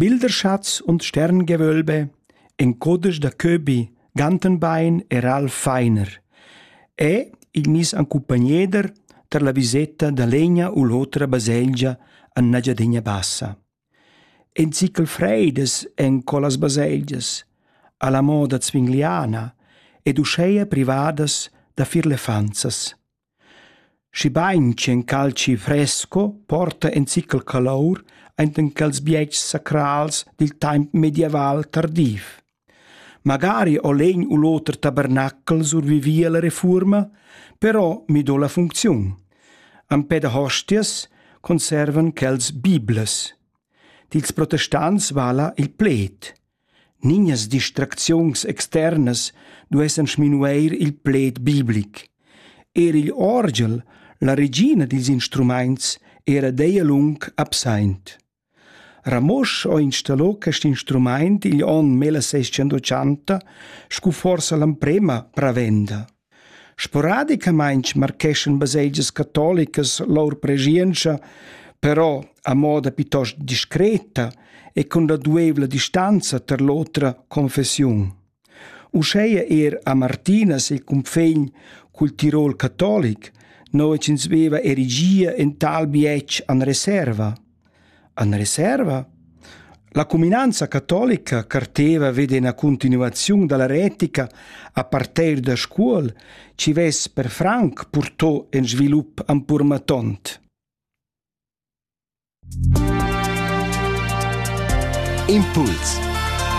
Bilderschatz und Sterngewölbe, in codesch da Köbi, Gantenbein e Ralf Feiner e il miss en cumpagnieder tar la viseta da legna u l'otra baselgia en Engiadina Bassa. In zichel freidas en quellas baselgias, alla moda zwingliana ed uscheia privadas da firlefanzas. Schibein ch'in calci fresco porta in zichel calour enten quels bietgs sacrals dil temps medieval tardiv. Magari ho l'egn u l'oter tabernacl survivi alla refuorma, però mi do la funcziun. Empè da hostias conservan quels biblas. Dils protestants vala il pled. Nignas distracziuns externas duessan sminueir il pled biblic. Eir igl orgel, la regina dils instrumaints, era deia lung absaint. Ramosch ho installo quest instrumaint igl onn 1680 scu forsa l'amprema pravenda. Sporadicamaing marcheschan baselgias catolicas lur preschientscha, però a moda piitost discreta e cun la duevla distanza tar l'otra confessiun. Uscheia eir a Martinas il cunfegn cul Tirol catolic, no ch'ins veva erigia in tal bietsch an reserva. En reserva? La cuminanza catolica carteva ved ina continuaziun dalla retica a parter da Scuol chi vess per franc purtò in svilup ampurmatont. Impuls